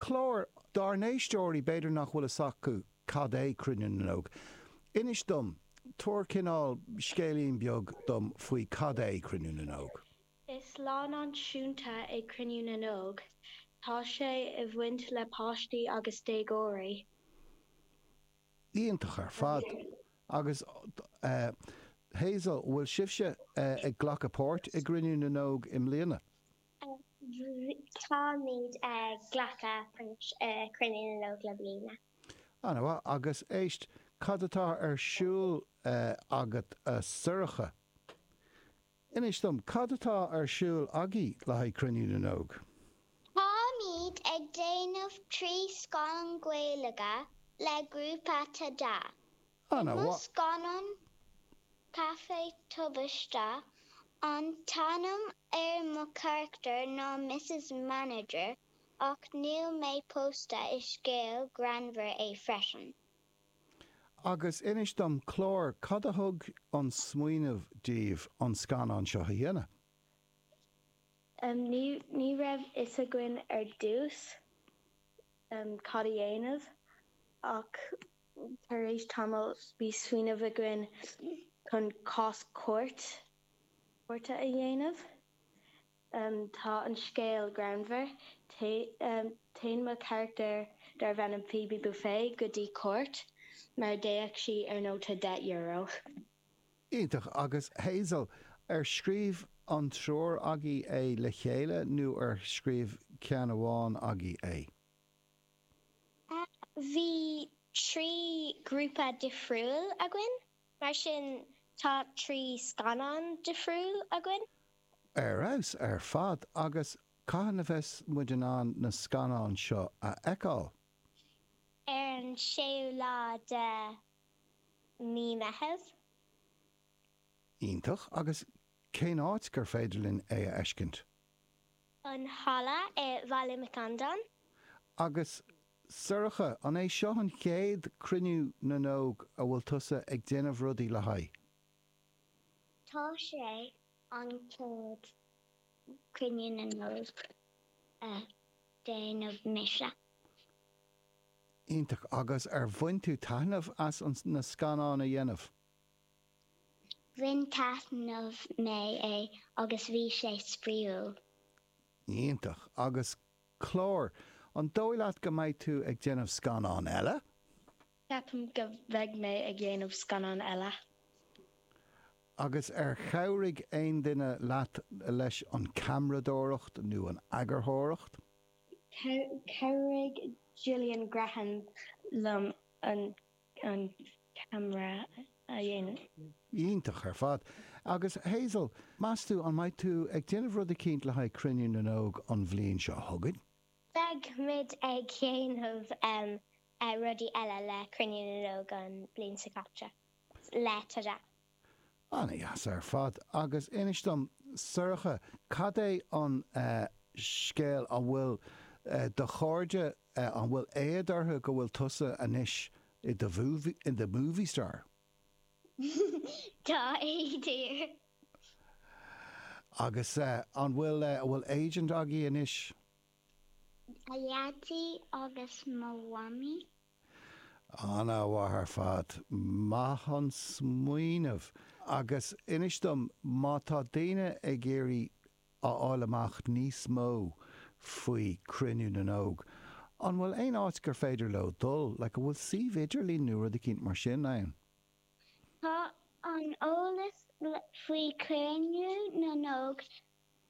Clár, dár n-éisteoirí, b'fhéidir nach bhfuil fhios acu cad é Cruinniú na nÓg. Inis dom, tabhair cineál scéilín beag dom faoi cad é Cruinniú na nÓg. Is lá náisiúnta é Cruinniú na nÓg. Tá sé i bhaint le páistí agus déagóirí. Iontach ar fad. Agus Hazel, bhfuil sibhse ag glacadh páirt i gCruinniú na nÓg i mbliana? Táimíd ag glacadh páirt i Cruinniú na nÓg le bliana. Ana mhaith. Agus éist, cad atá ar siúl agat a Sorcha? Inis dom, cad atá ar siúl agaí le haghaidh Cruinniú na nÓg? Táimíd ag déanamh trí scannán Gaeilge le grúpa Tada. Bhí mo scannán Caife Tubaiste an t-ainm ar mo charachtar ná Mrs Manager ach níl mé pósta, is scéal greannmhar é freisin. Agus inis dom, Clár, cad a thug an smaoineamh daoibh an scannán seo a dhéanamh? Ní raibh fhios againn ar dtús. ann cad a dhéanamh ach tar éis tamaill bhí smaoineamh againn chun cás cúirte a dhéanamh. Tá an scéal greannmhar. Téann mo charachtar darbh ainm Phoebe Buffay go dtí cúirt mar d'fhéach sí ar nóta deich euro. Iontach. Agus Hazel, ar scríobh an triúr agaibh é le chéile nó ar scríobh ceann amháin agaibh é? Bhí trí ghrúpa difriúil againn, mar sin tá trí scannán difriúil againn. Ar fheabhas ar fad. Agus cathain a bheas muid in ann na scannáin seo a fheiceáil? Ar an séú lá de Mí Meitheamh. Iontach, agus cén áit gur féidir linn é a fheiscint? An Halla i Bhaile Mhic Andáin. Agus Sorcha, an é seo an chéad Cruinniú na nÓg a bhfuil tusa ag déanamh rudaí le haghaidh? Tá sé an chéad Cruinniú na nÓg a déanamh mise. Iontach. Agus ar bhain tú taithneamh as an na scannáin a dhéanamh? Bhain taithneamh mé é agus bhí sé spraoiúil. Iontach. Agus Clár, an dóigh leat go mbeidh tú ag déanamh scannáin eile? Ceapaim go bheidh mé ag dhéanamh scannáin eile. Agus ar chabhraigh aon duine leat leis an ceamradóireacht nó an eagarthóireacht? Chabhraigh Gillian Graham liom an ceamara a dhéanamh. Iontach ar fad. Agus Hazel, meas tú an mbeidh tú ag déanamh rud eicínt le haghaidh Cruinniú na nÓg an bhliain seo chugainn? Beimid ag déanamh rudaí eile le Cruinniú na nÓg an bhliain seo chugainn le Tada. Ana-dheas ar fad. Agus inis dom, Sorcha, cad é an scéal, an bhfuil do chairde, an bhfuil éad orthu go bhfuil tusa anois i do movie star? Tá éad orthu. Agus an bhfuil, an bhfuil agent agaí anois? Mo Dhaidí agus mo Mhamaí. Ana-mhaith ar fad. Maith an smaoineamh. Agus inis dom, má tá daoine ag iarraidh a fháil amach níos mó faoi Cruinniú na nÓg, an bhfuil aon áit gur féidir leo dul, like an bhfuil suíomh idirlín nó rud eicínt mar sin ann? Tá an eolas faoi Cruinniú na nÓg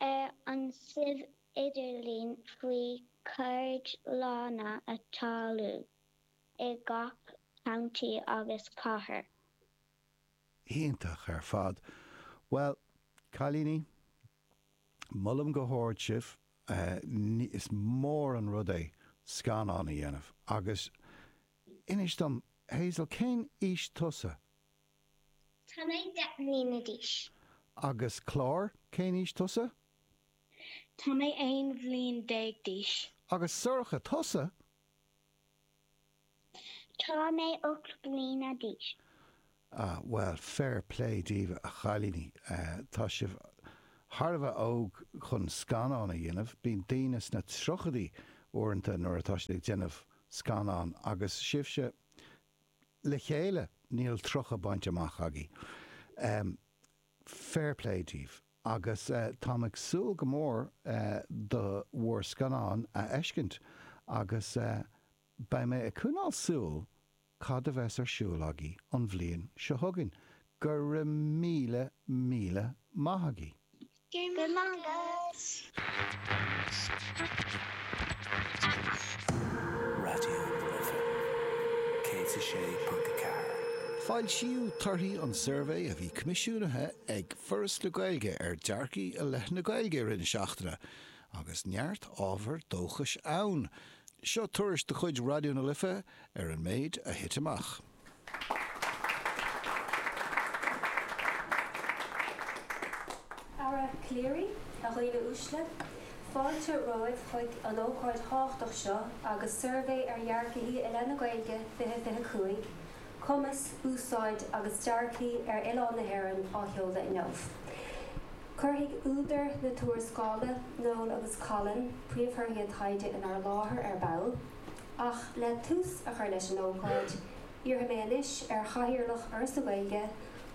Ar an suíomh idirlín faoi cheardlanna atá ar siúl i gach County agus Cathair. Iontach ar fad. Bhuel, cailíní, molaim go hard sibh. Is mór an rud é scannán a dhéanamh. Agus inis dom, Hazel, cén aois tusa? Tá mé deich mbliana d'aois. Agus Clár, cén aois tusa? Tá mé aon bhliain déag d'aois. Agus Sorcha, tusa? Tá mé ocht mbliana d'aois. Ah, bhuel, fair play daoibh a chailíní. Tá sibh thar a bheith óg chun scannán a dhéanamh. Bíonn daoine sna tríochaidí uaireanta nuair atá siad ag déanamh scannán. Agus sibhse, le chéile, níl 30 bainte amach agaibh. Fair play daoibh agus táim ag súil go mór le bhur scannán a fheiscint agus beidh mé ag coinneáil súil cad a bheas ar siúl agaibh an bhliain seo chugainn. Go raibh míle, míle maith agaibh. Foilsíodh torthaí an tsuirbhé a bhí coimisiúnaithe ag Foras na Gaeilge ar dhearcthaí i leith na Gaeilge i rith na seachtaine agus neart ábhar dóchais ann. Seo tuairisc de chuid Raidió na Life ar an méid a thit amach. A Aire Calleary, A dhaoine uaisle, fáilte romhaibh chuig an ócáid thábhachtach seo agus suirbhé ar dhearcthaí i leith na Gaeilge 2025, cumas, úsáid agus dearcthaí ar oileán na hÉireann á sheoladh inniu. Cuirfidh údair na tuarascála, Noel agus Colm, príomhthorthaí a dtaighde inár láthair ar ball. Ach le tús a chur leis an ócáid, iarrfaidh mé anois ar Chathaoirleach Fhoras na Gaeilge,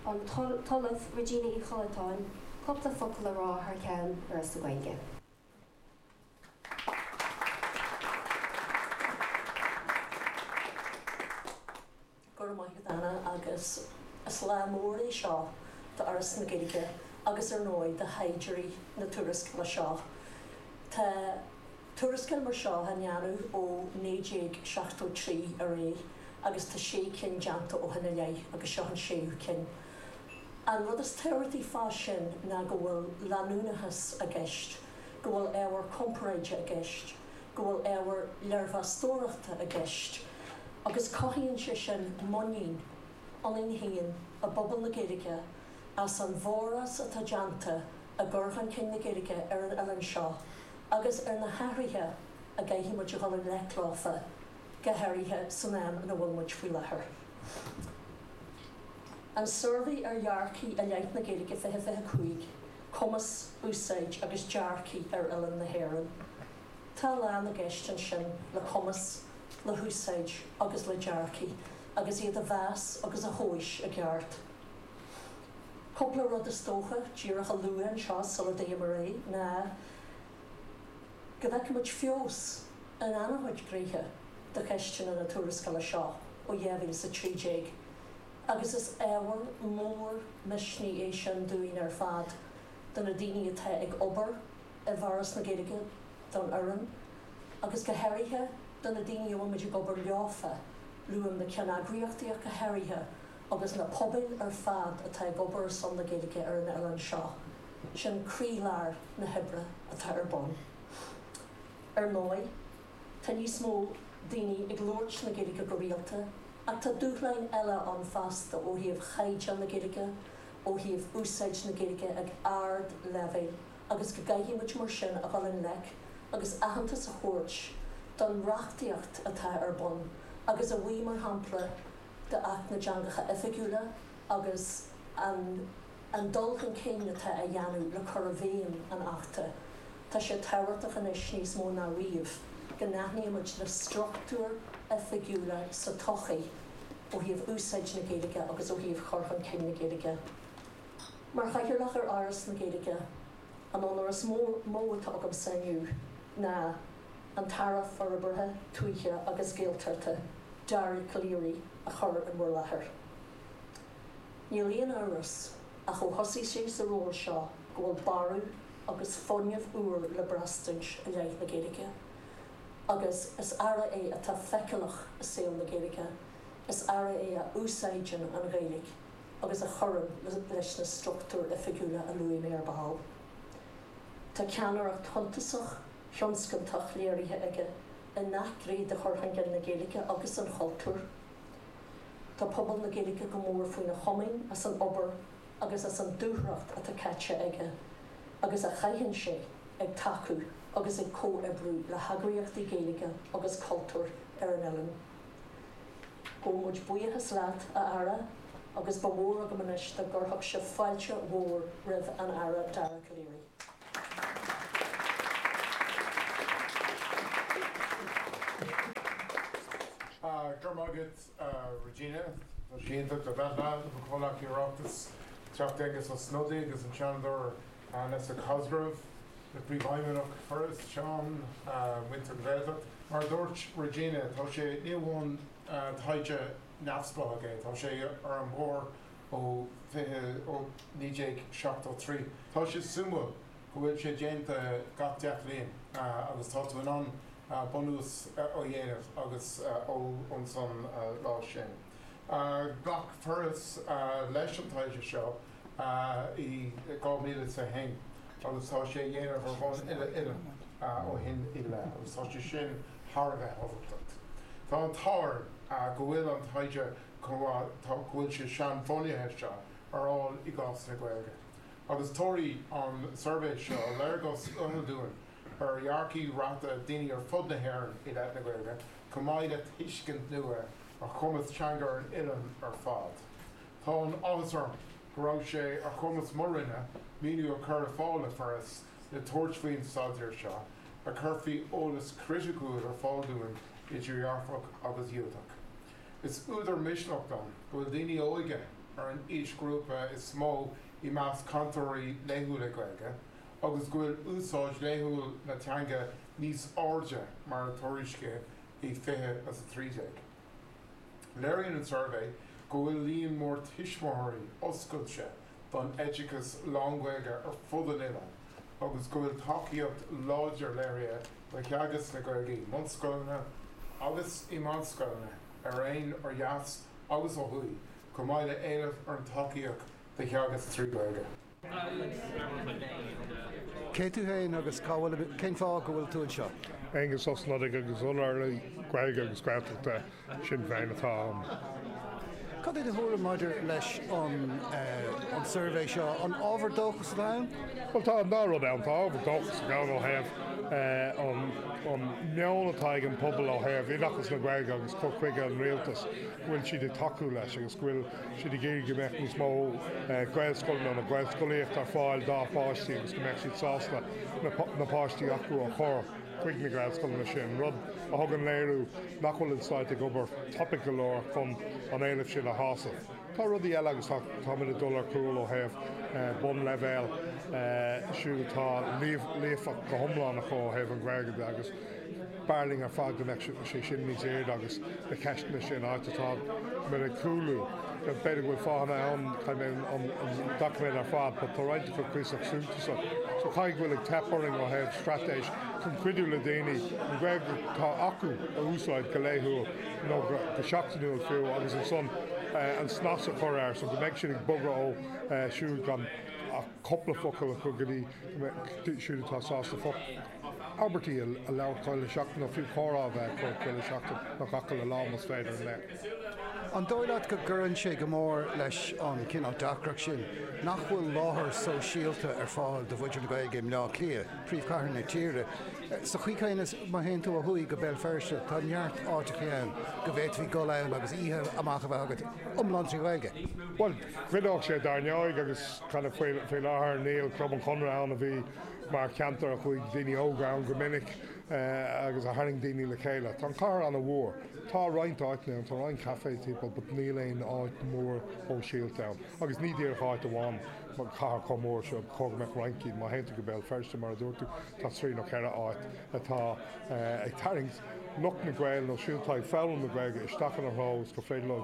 an tOllamh Regina Uí Chollatáin, cúpla focal a rá thar ceann Fhoras na Gaeilge. Go raibh maith agat Anna agus is lá mór é seo d'Fhoras na Gaeilge agus ar ndóigh do thaighdeoirí na tuarascála seo. Tá tuarascáil mar seo á ndéanamh ó 1973 ar aghaidh agus tá sé cinn déanta ó shin i leith agus seo an séú cinn. An rud is tábhachtaí fá sin ná go bhfuil leanúnachas i gceist, go bhfuil ábhar comparáide i gceist, go bhfuil ábhar léirmheastóireachta i gceist agus cothaíonn sé sin muinín ionainn féin i bpobal na Gaeilge as an bhforás atá déanta i gcur chun cinn na Gaeilge ar an oileán seo agus ar na hathruithe a gcaithfidh muid a dhul i ngleic leo, go háirithe san am ina bhfuil muid faoi láthair. An Suirbhé ar Dhearcthaí i Leith na Gaeilge 2025. cumas, úsáid agus dearcthaí ar oileán na hÉireann. Tá a lán i gceist ansin le cumas, le húsáid agus le dearcthaí agus iad a mheas agus a thomhas i gceart. Cúpla rud is dócha díreach a lua anseo sula dtéim ar aghaidh ná go bhfeicimid feabhas in an-chuid gnéithe de cheisteanna na tuarascála seo ó 2013 agus is ábhar mór misnigh é sin dúinn ar fad, do na daoine atá ag obair i bhForas na Gaeilge, don fhoireann, agus go háirithe do na daoine a bhfuilmid ag obair leofa, luaim na ceanneagraíochtaí ach go háirithe, agus na pobail ar fad atá ag obair ar son na Gaeilge ar an oileán seo. Sin croílár na hoibre atá ar bun. Ar ndóigh. Tá níos mó daoine ag labhairt na Gaeilge go rialta ach tá dúshláin eile ann fosta ó thaobh chaighdeán na Gaeilge, ó thaobh úsáid na Gaeilge ag ard leibhéal agus go gcaithfidh muid mar sin a dhul i ngleic agus aitheantas a thabhairt don reachtaíocht atá ar bun agus a bhí mar shampla d'Acht na dTeangacha Oifigiúla agus an An dul chun cinn atá á dhéanamh le cur i bhfeidhm an Achta, tá sé tábhachtach anois níos mó ná riamh go n-aithnímid na struchtúir oifigiúla sa tsochaí ó thaobh úsáid na Gaeilge agus ó thaobh chur chun cinn na Gaeilge. Mar Chathaoirleach ar Fhoras na Gaeilge, an onóir is mó atá agamsa inniu ná an tAire Forbartha Tuaithe agus Gaeltachta, Dara Calleary, a chur in bhur láthair. Níl aon amhras ach ó thosaigh sé sa ról seo go bhfuil borradh agus fuinneamh úr le braistint i leith na Gaeilge. Agus is Aire é atá feiceálach i saol na Gaeilge, is Aire é a úsáideann an Ghaeilge agus a chuireann leis na struchtúir oifigiúla a luaigh mé ar ball. Tá ceannaireacht shuntasach, thionscantach léirithe aige i ngach gné de chur chun cinn na Gaeilge agus an chultúir. Tá pobal na Gaeilge go mór faoina chomaoin as an obair agus as an dúthracht atá caite aige agus a chaitheann sé ag tacú agus ag comhoibriú le heagraíochtaí Gaeilge agus cultúir ar an oileán. Gabhann muid buíochas leat, a Aire, agus ba mhór agam anois dá gcuirfeadh sibh fáilte mhór roimh an Aire Dara Calleary. Go raibh maith agat, a Regina. Tá sé iontach a bheith leat, le mo chomhghleacaithe Oireachtais, an Teachta Aengus Ó Snodaigh agus an Seanadóir Nessa Cosgrove, le Príomhfheidhmeannach Foras, Seán, muintir na Gaeltacht. Mar a dúirt Regina, tá sé ní amháin taighde neamhspleách é, tá sé ar an mbóthar ó 1973. Tá sé suimiúil go bhfuil sé déanta gach deich mbliana agus tá tú in ann bunús a dhéanamh agus ón son lá sin. Ghlac Foras leis an taighde seo i 2021 agus tá sé á dhéanamh ar bhonn uile-oileáin ó shin i leith agus tá sé sin thar a bheith tábhachtach. Tá an t-ádh orm go bhfuil an taighde chomh maith tá go bhfuil sé seanbhunaithe seo ar fháil i gcás na Gaeilge agus tabharfaidh an suirbhé seo léargas uathúil dúinn ar dhearcthaí reatha daoine ar fud na hÉireann i leith na Gaeilge chomh maith le tuiscint nua ar chumas teanga ar an oileán ar fad. Tá an áthas orm go raibh sé ar chumas mo Roinne maoiniú a chur ar fáil don Fhoras le tabhairt faoin staidéar seo a chuirfidh eolas criticiúil ar fáil dúinn idir dhearfach agus dhiúltach. Is údar misnigh dom go bhfuil daoine óga ar an aoisghrúpa is mó i measc cainteoirí laethúla Gaeilge agus go bhfuil úsáid laethúil na teanga níos airde ná a tuairiscíodh i 2013. Léiríonn an suirbhé go bhfuil líon mór tuismitheoirí oscailte don oideachas lán-Ghaeilge ar fud an oileáin agus go bhfuil tacaíocht láidir léirithe do theagasc na Gaeilge i mbunscoileanna agus i meánscoileanna araon ó dheas agus ó thuaidh chomh maith le héileamh ar an tacaíocht do theagasc trí Ghaeilge. Cé tú féin agus cá bhfuil, cén fáth go bhfuil tú anseo? Aengus Ó Snodaigh agus Urlabhraí Gaeilge agus Gaeltachta. Sinn Féin atá ann. Cad é do thuairim maidir leis an suirbhé seo? An ábhar dóchais é ann? Bhuel, tá an dá rud ann. Tá ábhar dóchais ann ó thaobh an meon atá ag an bpobal ó thaobh oideachas na Gaeilge agus cur chuige an Rialtais, go bhfuil siad ag tacú leis agus go bhfuil siad ag iarraidh go mbeadh níos mó Gaelscoileanna nó Gaelscolaíocht ar fáil dá páistí agus go mbeadh siad sásta na páistí acu a chur chuig na Gaelscoileanna sin, rud a thugann léiriú nach bhfuil an Stát ag obair tapaidh go leor chun an éileamh sin a shásamh. Tá rudaí eile agus táimid ag dul ar gcúl ó thaobh bun leibhéal siúd atá líofacht go hiomlán acu ó thaobh an Ghaeilge de agus b'fhearr linn ar fad go mbeadh sé sin níos airde agus na ceisteanna sin áit atáimid ag cúlú. B'fhéidir go bhfuil fáthanna ann, chaithfinn an doiciméad ar fad, but tá roinnt acu cuíosach súntasach. So caithfidh go bhfuil ag teip orainn ó thaobh straitéis chun cuidiú le daoine an Ghaeilge atá acu a úsáid go laethúil nó go seachtainiúil fiú agus ansan an snas a chur air so go mbeidh siad ag bogadh ó siúd gan ach cúpla focal acu go dtí siúd atá sásta focal abairtí a labhairt gach uile sheachtain nó fiú comhrá a bheith acu gach uile sheachtain nó gach uile lá más féidir an méid sin. An dóigh leat go gcuireann sé go mór leis an cineál deacracht sin nach bhfuil láthair sóisialta ar fáil do mhuintir na Gaeilge i mBleá Cliath, príomhchathair na tíre? Sa chaoi chéanna má théann tú ó thuaidh go Béal Feirste tá neart áiteachaí ann go bhféadfaí dul ann agus oíche amach a bheith agat iomlán trí Ghaeilge. Bhuel, chuideodh sé dar ndóigh agus, creid it faoi láthair níl Club an Chonartha ann a bhí mar cheantar a chuaigh daoine óga ann go minic agus a tharraing daoine le chéile. Tá an chathair an-mhór. Tá roinnt áiteanna ann, tá roinnt cafés timpeall but níl aon áit mhór shóisialta ann agus ní díreach áit amháin mar chathair chomh mór seo, gá go mbeadh roinnt díobh, má théann tú go Béal Feirste mar a dúirt tú, tá trí nó ceithre áit atá ag tarraingt lucht na Gaeilge nó siúd atá ag foghlaim na Gaeilge isteach ina threo is gur féidir leo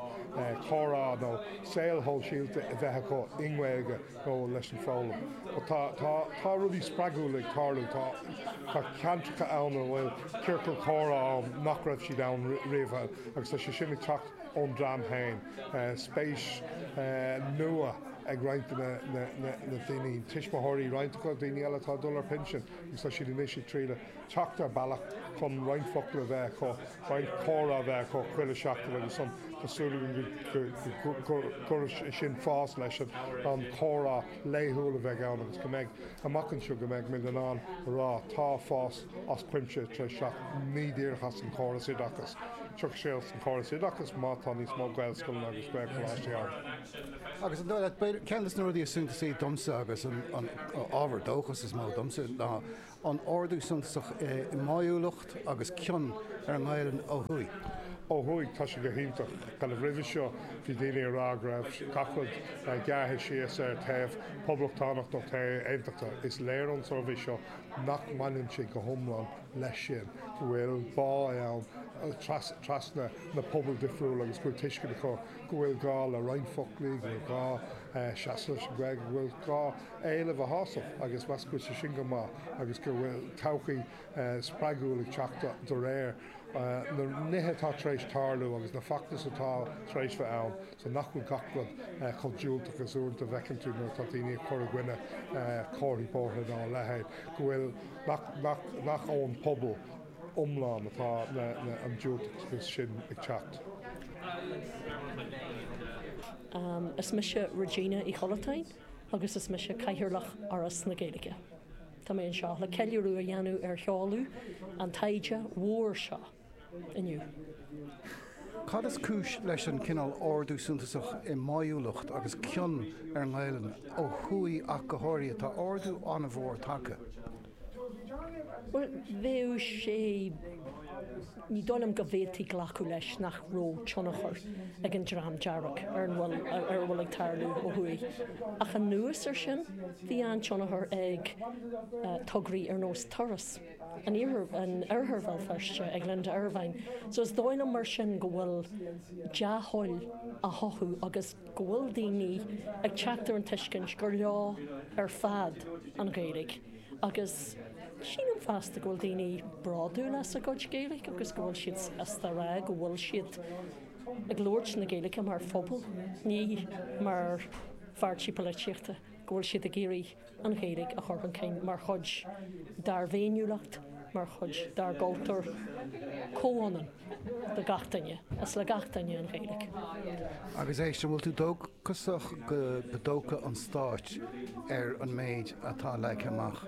comhrá nó saol shóisialta a bheith acu i nGaeilge. leis an foghlaim. But tá rudaí spreagúla ag tarlú, tá ceantracha ann a bhfuil ciorcail chomhrá ann nach raibh siad ann riamh agus tá sé sin ag teacht ón dream féin. Spéis nua ag roinnt de na daoine, tuismitheoirí, roinnt acu, daoine eile atá ag dul ar pinsean agus tá siad anois ag triall teacht ar bealach chun roinnt focal a bheith acu, roinnt comhrá a bheith acu chuile seachtain agus ansan tá súil againn go gcuirfidh sé sin fás leis an chomhrá laethúil a bheidh ann agus go mbeidh, amach anseo, go mbeidh muid in ann a rá tá fás as cuimse tar éis teacht. Ní díreach as an chóras oideachais. Tiocfaidh sé as an chóras oideachais má tá níos mó Gaelscoileanna agus Gaelcholáistí ann. Agus an dóigh leat, ceann des na rudaí is suntasaí domsa agus an ábhar dóchais is mó domsa ná an ardú suntasach i mbáúlacht agus cion ar an nGaelainn ó thuaidh. Ó thuaidh, tá sé go hiontach. Mar roimhe seo, bhí daoine ag rá go raibh gach rud gearrtha síos ar thaobh Poblachtánach nó taobh Aontachtach. Is léir ón suirbhé seo nach mbaineann sé go hiomlán leis sin, go bhfuil bá ann trasna na pobail difriúla agus go bhfuil tuiscint acu go bhfuil gá le roinnt foclaí, go bhfuil gá seasamh leis an Ghaeilge, go bhfuil gá. éileamh a shásamh agus measaim go bhfuil sé sin go maith agus go bhfuil todhchaí spreagúil ag teacht de réir na nithe atá tar éis tarlú agus na feachtais atá tar éis bheith ann so nach bhfuil gach rud chomh diúltach is uaireanta a bhfeiceann tú nuair atá daoine ag cur i gcoinne comharthaí bóithre ná a leithéid go bhfuil nach ón bpobal iomlán atá an diúltachas sin ag teacht. Is mise Regina Uí Chollatáin. agus is mise Cathaoirleach Fhoras na Gaeilge. Tá mé anseo le ceiliúradh a dhéanamh ar sheoladh an taighde mhóir seo inniu. Cad is cúis leis an gcineál ardú suntasach i mbáúlacht agus cion ar an nGaelainn ó thuaidh ach go háirithe? Tá ardú an-mhór tagtha. Bhuel, bheadh sé ní dóigh liom go bhféadfaí glacadh leis nach raibh tionchar ag an dream dearg ar an bhfuil ar a bhfuil ag tarlú ó thuaidh. Ach anuas ar sin, bhí an-tionchar ag tograí ar nós Turas in Oirthear Bhéal Feirste, ag Linda Ervine. So is dóigh liom mar sin go bhfuil dea-thoil á chothú agus go bhfuil daoine ag teacht ar an tuiscint gur leo ar fad an Ghaeilge agus sílim fosta go bhfuil daoine bródúil as a gcuid Gaeilge agus go bhfuil siad sásta a rá go bhfuil siad ag labhairt na Gaeilge mar phobal, ní mar pháirtí polaitíochta, go bhfuil siad ag iarraidh. an Ghaeilge a chur chun cinn mar chuid dár bhféiniúlacht, mar chuid dár gcultúr comhionann do gach duine. Is le gach duine an Ghaeilge. Agus éist, an bhfuil tú dóchasach go dtógfaidh an dá stát ar an méid atá leagtha amach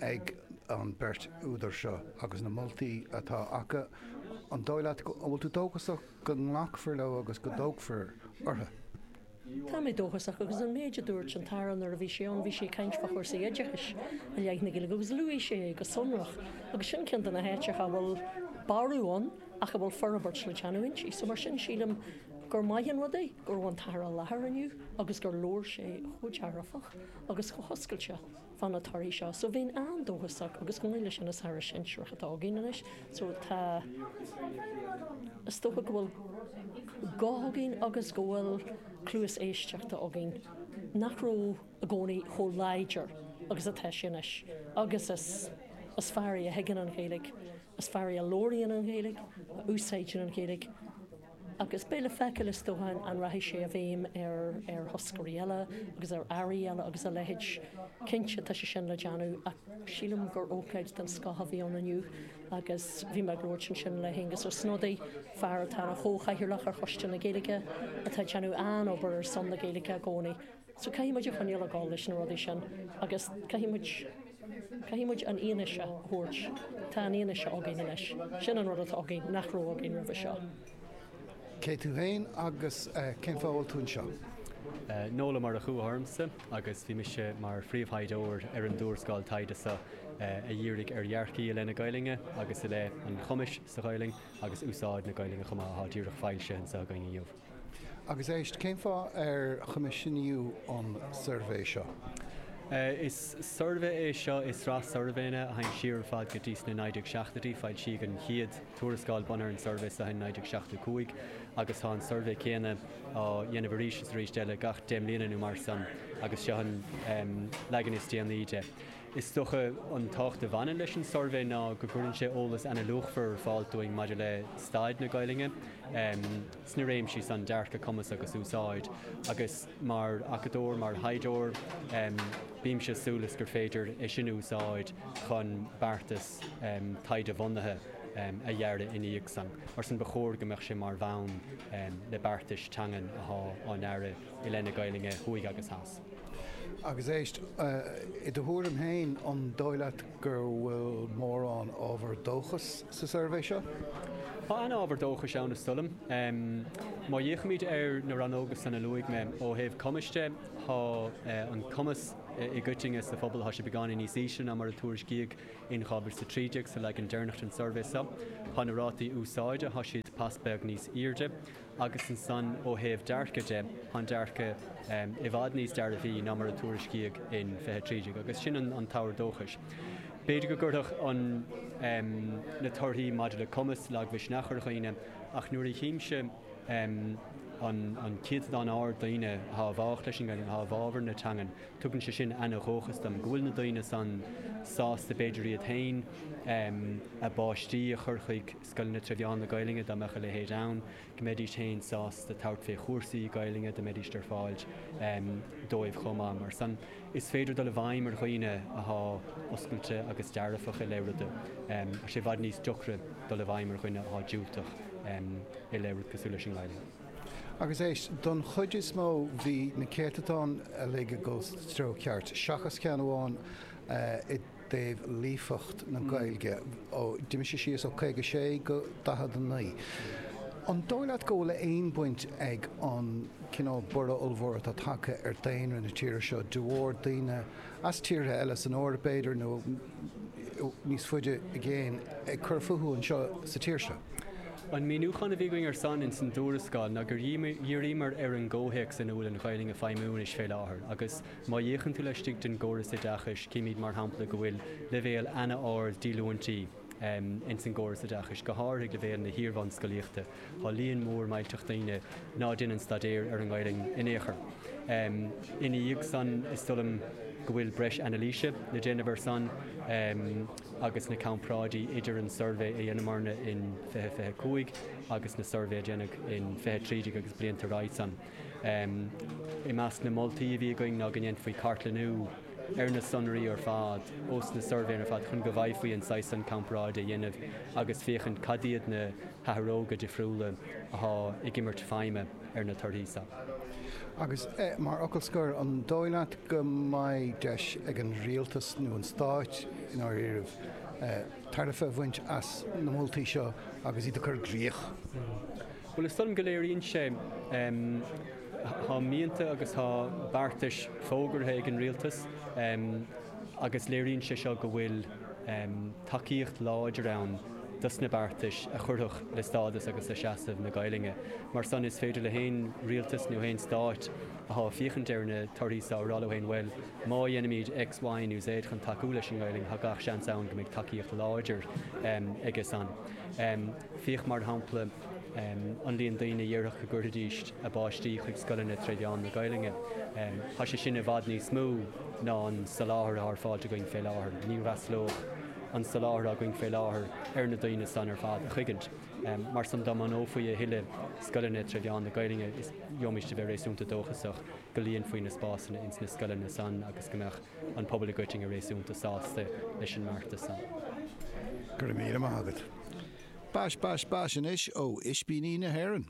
ag an beirt údar seo agus na moltaí atá acu, an dóigh leat, an bhfuil tú dóchasach go nglacfar leo agus go dtógfar orthu? Tá mé dóchasach agus an méid a dúirt an tAire nuair a bhí sé ann, bhí sé ag caint fá chúrsaí oideachais i leith na Gaeilge agus luaigh sé é go sonrach agus sin ceann de na háiteacha a bhfuil borradh ann ach a bhfuil forbairt le déanamh inti. So mar sin sílim gur maith an rud é go raibh an tAire i láthair inniu agus gur labhair sé chomh dearfach agus chomh hoscailte. fá na torthaí seo. So bheinn an-dóchasach agus go háirithe leis an Aire Sinsearach atá againn anois. So tá, is dócha go bhfuil guth againn agus go bhfuil cluas éisteachta againn nach raibh i gcónaí chomh láidir agus atá sé anois. Agus is fear é a thuigeann an Ghaeilge, is fear é a labhraíonn an Ghaeilge, a úsáideann an Ghaeilge, Agus beidh le feiceáil is dócha an rachaidh sé i bhfeidhm ar thoscairí eile agus ar airí eile agus a leithéid. Cinnte tá sé sin le déanamh ach sílim gur ócáid den scoth a bhí ann inniu agus bhí mé ag labhairt ansin le hAengus Ó Snodaigh, fear atá ina chomhchathaoirleach ar Choiste na Gaeilge, atá ag déanamh an-obair ar son na Gaeilge i gcónaí. So caithfidh muid a choinneáil ag dul leis na rudaí sin agus caithfidh muid. Caithfidh muid an fhianaise a thabhairt. Tá an fhianaise againn anois. Sin an rud atá againn nach raibh againn roimhe seo. Cé tú fhéin agus cén fáth a bhfuil tú anseo? Noel Ó Murchadha ormsa agus bhí mise mar phríomhthaighdeoir ar an dtuarascáil taighde seo a dhírigh ar dhearcthaí i leith na Gaelainne agus i leith an chumais sa Ghaelainn agus úsáid na Gaelainne chomh maith atá díreach foilsithe anseo againn inniu. Agus éist, cén fáth ar coimisiúnaíodh an suirbhé seo? Is suirbhé é seo i sraith suirbhéanna a théann siar ar fad go dtí na 1970idí. Foilsíodh an chéad tuarascáil bunaithe ar an suirbhé so in 1975 agus tá an suirbhé céanna á dhéanamh arís is arís eile gach deich mbliana nó mar san agus seo an leagan is déanaí de. Is dócha an tábhacht a bhaineann leis an suirbhé ná go gcuireann sé eolas ana-luachmhar ar fáil dúinn maidir le staid na Gaelainne sna réimsí san, dearcadh, cumas agus úsáid. Agus mar acadóir, mar thaighdeoir, bímse ag súil is gur féidir é sin a úsáid chun beartas taighde-bhunaithe a dhearadh ina dhiaidh san. Mar sin ba chóir go mbeadh sé mar bhonn le beartais teangan athá á ndearadh i leith na Gaelainne, thuaidh agus theas. Agus éist, i do thuairim féin, an dóigh leat go bhfuil mórán ábhar dóchais sa suirbhé seo? Thá ana-ábhar dóchais ann is dóigh liom. Má fhéachaimíd ar na rannóga san a luaigh mé, ó thaobh cumais de, thá an cumas i gcoitinne sa phobal, thá sé beagáinín níos ísle ná mar a tuairiscíodh in 2013 sa leagan deireanach den suirbhé seo. Thá na rátaí úsáide, thá siad pas beag níos aoirde. Agus ansan ó thaobh dearcaidh de, tá an dearcadh i bhfad níos dearbhaí ná mar a tuairiscíodh in Fiche Trí Déag agus sin an t-ábhar dóchais. B'fhéidir go gcuirfeadh na torthaí maidir le cumas lagmhisneach ar dhaoine ach nuair a chímse an céatadán ard daoine athá i bhfách leis an nGaeilge, athá i bhfábhar na teangan, tugann sé sin ana-dhóchas dom go bhfuil na daoine san sásta b'fhéidir iad féin, a bpáistí a chur chuig scoileanna tre mheán na Gaeluinne, dá mbeadh a leithéid ann, go mbeidís féin sásta tabhairt fé chúrsaí Gaeluinne dá mbeidís ar fáil dóibh chomh maith. Mar san is féidir dul i bhfeidhm ar dhaoine athá oscailte agus dearfach i leith ruda. Tá sé i bhfad níos deacra dul i bhfeidhm ar dhuine athá diúltach i leith rud cosúil leis an nGaeluinn. Agus éist, don chuid is mó bhí na céatadáin uilig ag gabháil sa treo ceart, seachas ceann amháin i. dtaobh líofacht na Gaeilge ó d'imigh sé síos ó 56 go 49. An dóigh leat go bhfuil aon baint ag an cineál borradh ollmhór atá tagtha ar dhaonra na tíre seo de bharr daoine as tíortha eile, san Eoraip b'fhéidir nó níos faide i gcéin, ag cur fúthu anseo sa tír seo? An míniúchán a bhí againn ar san ins an dtuarascáil ná gur dhíríomar ar an gcomhthéacs ina bhfuil an Ghaelainn ag feidhmiú anois fé láthair agus, Má fhéachann tú laistigh den gcóras oideachais, chímíd mar shampla go bhfuil leibhéal ana-ard díolúintí ins an gcóras oideachais, go háirithe ag leibhéal na hiarbhunscolaíochta. Tá líon mór millteach daoine ná déanann staidéar ar an nGaelainn in aon chor. Ina dhiaidh san, is dóigh liom go bhfuil breis anailíse le déanamh ar san agus na comparáidí idir an suirbhé a dheineamarna in fiche fiche cúig agus an suirbhé a deineadh in fiche trí déag agus blianta roimhe san. I measc na moltaí a bhí againn ná go ndéanfaí cartlannú ar na sonraí ar fad ós na suirbhéanna ar fad chun go bhféadfaí an saghas san comparáid a dhéanamh agus féachaint cad iad na hathróga difriúla athá ag imirt feidhme ar na torthaí san. Agus, mar fhocal scoir, an dóigh leat go mbeidh deis ag an Rialtas nó an Stáit, i ndáiríribh, tairbhe a bhaint as na moltaí seo agus iad a chur i gcrích? Bhuel, is dóigh liom go léiríonn sé, tá mianta agus tá beartais fógartha ag an Rialtas agus léiríonn sé seo go bhfuil tacaíocht láidir ann dos na beartais a chuirfeadh le stádas agus le seasamh na Gaelainne. Mar san, is féidir le haon Rialtas nó haon Stáit athá ag féachaint ar na torthaí so a rá leo féin, bhuel, má dheinimíd X, Y nó Z chun tacú leis an nGaelainn, tá gach seans ann go mbeidh tacaíocht láidir aige san. Féach mar shampla an líon daoine a dhéarfadh go gcuirfidís a bpáistí chuig scoileanna tré mheán na Gaeluinne. Tá sé sin i bhfad níos mó ná an soláthar atá ar fáil againn fé láthair. Ní fhreastlódh an soláthar atá againn fé láthair ar na daoine san ar fad in aon chuigint. Mar san dá mbunófaí a thuilleadh scoileanna tré mheán na Gaeluinne is gheobhaimíst a bheith réasúnta dóchasach go líonfaí na spásanna ins na scoileanna san agus go mbeadh an pobal i gcoitinne réasúnta sásta leis an mbeartas san. Go raibh míle maith agat. Bash, bash, bash anois ó Ispíní na hÉireann.